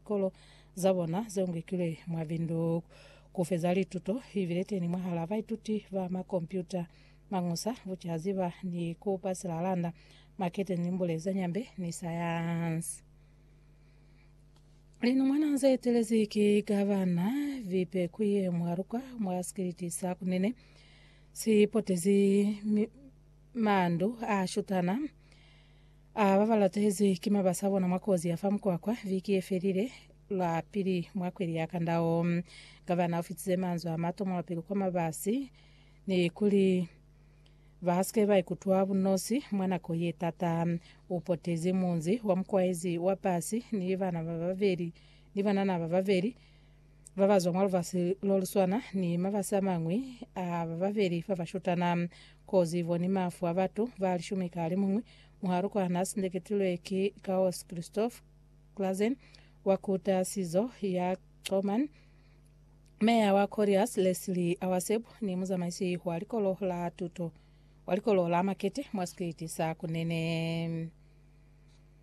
likolo za bona ze ngwikilwe mwa Windhoek ku feza lituto i bile teni mwahal'a baituti ba makompyuta, mañusa, bucaziba ni ku pasela landa, marketing, limbule za nyambe ni sayansi. Linumwana ze etelezi ki Gavana Vipekuye Mwaruka mwa sikiliti sa Kunene si potezi mi, mandu a shutana. A ba ba latezwi ki mabasi a bona mwa kozi ya fa mukwakwa viki ye felile, lwa pili mwa kweli ya kanda wo. Gavana u fitize manzwi a mato mwa pili kwa mabasi ni kuli ba si ke ba ikutwa bunosi mwa nako ye tata. U potezi munzi wa mukwaezi wa basi ni banana ba babeli ni banana ba babeli. ba ba zwa mwa lubasi lo lu swana ni mabasi a mañwi a ba babeli ba ba shutana. Kozi bo ni mafu a batu ba lishumi ka alimuñwi. Muhalu kwa na sindeketilwe ki Kaos Christoph Clausen wa ku tahasizo ya Coman, meya wa Colliers Leslie Awaseb ni muzamaisi wa likolo la tuto wa likolo la makete mwa sikwiti sa Kunene.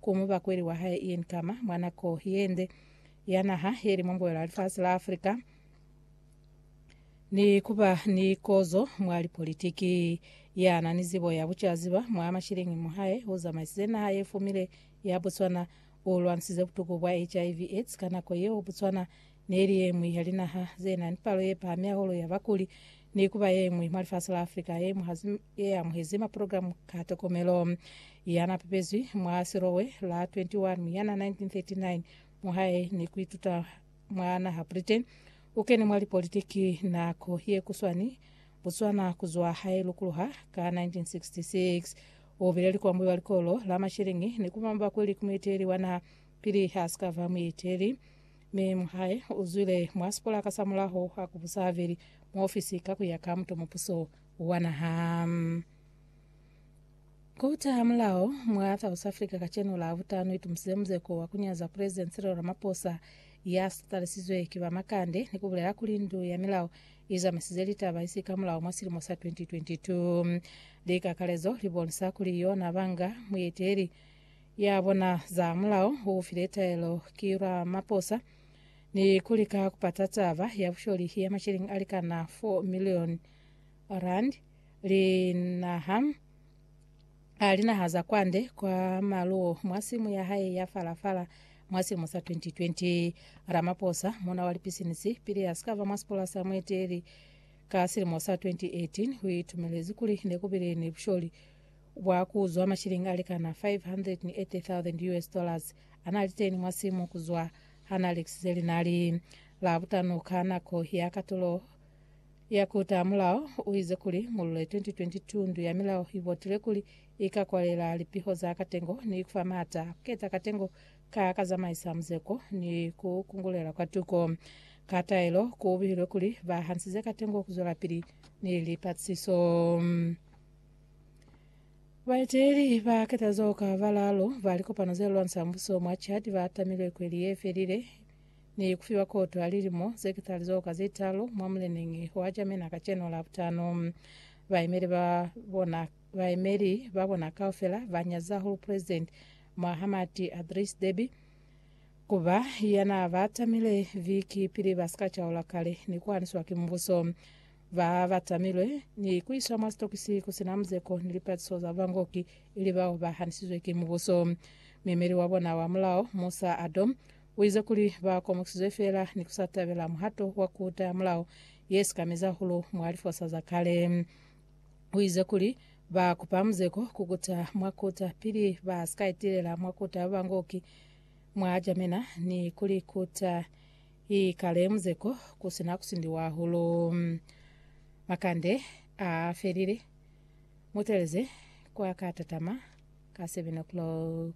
Ku mubakweli wa hae Ian Khama, mwa nako ye nde ya naha ye li mwa mbuelo ya lifasi la Africa, ni ku ba ni kozo mwa lipolitiki, ya na ni zibo ya bucaziba mwa mashilingi mo hae u zamaisize naha ye fumile ya Botswana, u lwanisize butuku bwa HIV, aids ka nako yeo Botswana Neli yeñwi ya linaha zenani palo yepahami ya holo ya bakuli ni kuba yeñwi mwa lifasi la Africa yeamuhezi maprogramu ka tokomelo. Yana pepezwi mwa silowe la 21 Muyana 1939 muhae ni kuituta mwa naha Britain, ukene mwa lipolitiki nako yekuswani Botswana kuzwa hae lukuluha ka 1966. Ubile likwambi wa likolo la masheleñi ni kuba mubakuli ku mueteli wa naha pili hasikaba mueteli Mi mu hae u zwile mwa sipolaka sa mulaho ha ku busa habeli mwa ofisi ka ku ya ka muto mupuso wa naha. Kota ha mulao mwa South Africa kacenu la butano itumusile muzeko wa kunyaza President Cyril Ramaphosa ya sitalisizwe ki ba makande ni kubulela kuli ndu ya milao izamisize litaba isi ka mulao mwa silimo sa 2022. Likakalezo libonisa kuli yona banga mueteli Ya bona za mulao u file taelo ki lwa maposa ni ku lika ku pata taba ya busholi ya masheleng a likana 4 milioni rand linaha a linaha za kwande kwa maluo mwa simu ya hae ya falafala mwa silimo sa 2020. Ramaposa muna wa lipisinisi pili ya sikava mwa sipola sa mueteli ka silimo sa 2018 u itumelezi kuli ne ku bile ni busholi Bwa ku zwa mashilingi a likana US580,000 a na li teni mwa simu ku zwa ha na lekisize linali. Labutano ka nako ya katulo ya ku taha mulao, u ize kuli, Mu Lule 2022, ndu ya milao i botile kuli i ka kwalela lipiho za katengo ni ku fa maata a ku keta katengo ka ka zamaisa muzeko ni ku kungulela kwa tuko. Ka taelo, ku bihilwe kuli ba hansize katengo ku zwelapili ni lipatlisiso. Baeteli ba ketazo ka balalo ba likopano ze lwansa mbuso mwa Chad ba tamilwe kweli ye felile ni kufiwa koto ya lilimo ze ketali zo ka ze talo mwa muleneñi wa Jamena kacenu la butano. Baemeli ba bona baemeli ba bona kaufela ba nyaza hulu President Mohamed Adris Deby kuba yana ba tamile viki pili ba sika chaula kale ni kuhaniswa ki mbuso. Ba ba tamilwe ni ku iswa mwa sitokisi ku si na muzeko ni lipatiso za bangoki, ili bao ba hanisizwe ki mubuso. Muemeli wa bona wa mulao, Musa Adom, u ize kuli ba komokisizwe feela ni ku sa tabela muhato wa ku utaya mulao ye si ka mezi hahulu mwa lifosa za kale. U ize kuli ba kupa muzeko ku kuta mwa kota pili ba si ka itilela mwa kota ya bangoki mwa jamena ni ku li kuta I kale muzeko ku si na ku sindiwa hahulu. Makande a felile. Mutelezi kwa ka tatama ka seven o'clock.